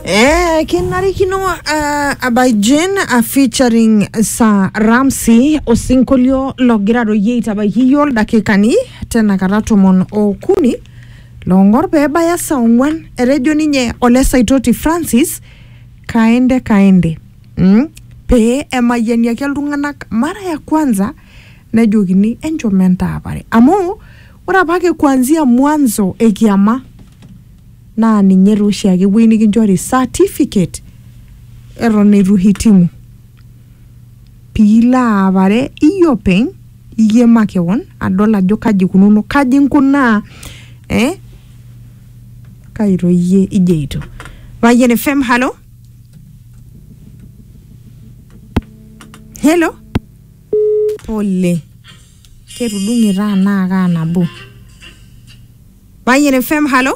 Eh, kenarikino uh, abajen uh, featuring sa ramsi osinkolio logira royie aitabaiki yiol dakikani tenakata tomon okuni longor pebaya saa ong'uan etejo ninye ole saitoti francis kaende kaende mm? pee emayianiaki iltung'anak mara ya kwanza nejokini enchom entaapare amu ore apake kuanzia mwanzo ekiama naa ninye taa oshiake ewueji nikinchori certificate eton eitu hitimu piilo aapare iyie openy iyie makewon adol ajo kaji ikununo kaji inkunaa eh kai toi iyie ijeito Payian FM halo helo pole ketudung'e taa anaa kaa nabo Banjul FM halo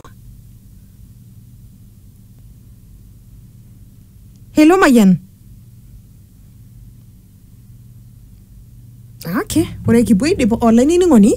helo mayian ake ore kipuo aidip olainining'oni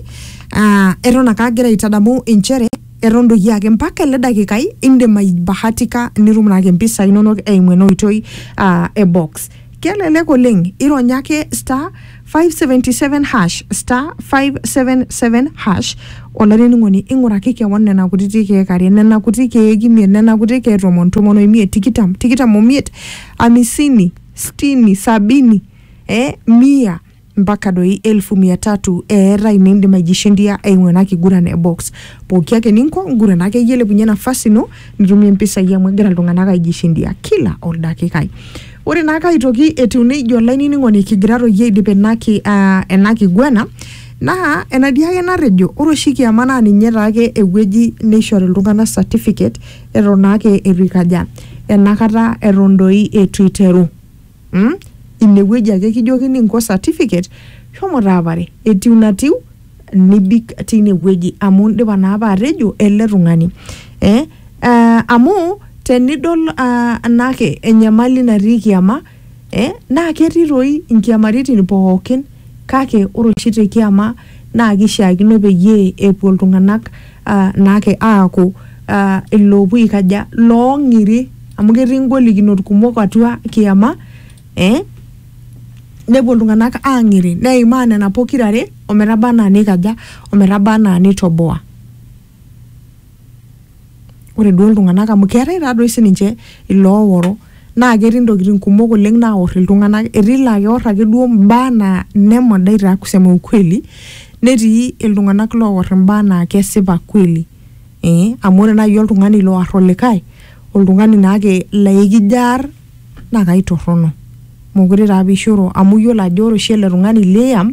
ah, eton ake agira aitadamu inchere eton doi ake mpaka ele dakikai indim aibahatika nitum naake mpisai inonok eimu ena oitoi ah, e box kelelek oleng ironya ake star 577 hash star 577 hash olainining'oni ing'uraki kewon nena kutiti keek are nena kuti keek imiet nena kuti keek tomon tomon oimiet tikitam tikitam omiet amisini stini sabini eh, mia mpaka doi elfu mia tatu eetae nindim aijishindia eimu ena kiguran e box. Pooki ake ninko ngurana akeyie ilepunye nafasi ino nitumie mpisai amu egira iltung'anak aijishindia kila oldakikai. Ore naake aitoki etiu neija olainining'oni kigira toi aidip ina ki, ah, ena kiguana naa enatii ake natejo ore oshi kiama naa ninye taake ewueji neishori iltung'anak certificate eton naake eitu ikaja, enakata eton doi eitu iteru. mm? inewueji ake kijokini nko certificate shomo taapare etiu natiu nibik tine wueji amu indipa naa apa atejo ele tung'ani eh? uh, amu tenidol uh, naake enyamali natii kiama eh? naa ketii toi inkiamaritin pookin kake ore oshi te kiama naa kishiakino peyie epuo iltung'anak uh, naake aaku uh, iloopuo aikaja loong'iri amu ketii ngolikinot kumok atua kiyama eh? nepuo iltung'anak aang'iri neimaa nena pokirare ometaba anaa neikaja ometaba anaa neitoboa ore duo iltung'anak amu keetae taadoi sininche ilooworo naa ketii ntokitin kumok oleng naor iltunganak etii laa keor ake duo mbaa naa ine modai taa kusema ukweli netii iltunganak loor imbaa naa kesipa kweli ee amu ore nai oltungani loar olikae oltungani naake laa ekijo aar naa kaitorono mokure taa apa eishoru amu iyiolo ajo ore oshi ele tungani liam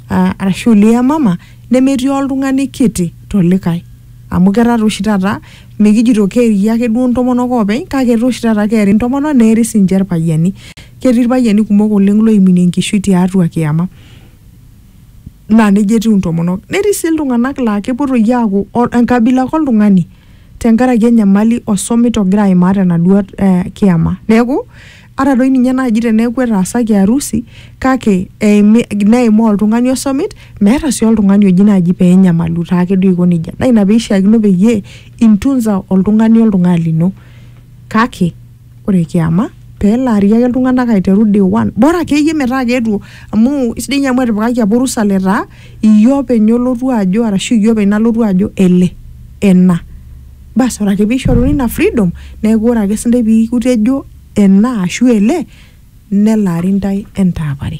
aa arashu liamama nemetii oltung'ani kiti tolikae amu ketaa taa oshi taata mikijito keeri ake duo intomonok oopeny kake etaa oshi taata keeri intomonok neeri sinche irpayiani ketii irpayiani kumok oleng loiminie enkishui tiatua kiyama naa nejia etiu intomonok netii sii iltung'anak laa kepuo toi aaku o- enkabila ake oltung'ani tenkaraki enyamali osomit ogira aimaa tenaduo eh, kiyama neeku Ata doi ninye naaji teneeku etaasaki arusi kake eimi neimaa oltung'ani osomit meeta sii oltung'ani oji naaji pee enyamalu taake duo aiko nejia. Naa ina peishiakino peyie intunza oltung'ani oltung'ani lino. Kake ore kiama pee elaari ake iltung'anak aiteru day one. Bora akeyie metaa keetuo amu isidai ninye amu etipikaki apa orusa letaa iyie openy olotu ajo arashu iyie openy nalotu ajo ele ena. basi ore ake piishoruni ina freedom neeku ore ake sindai piikutejo ena ashu ele nelaari ndai entaapare.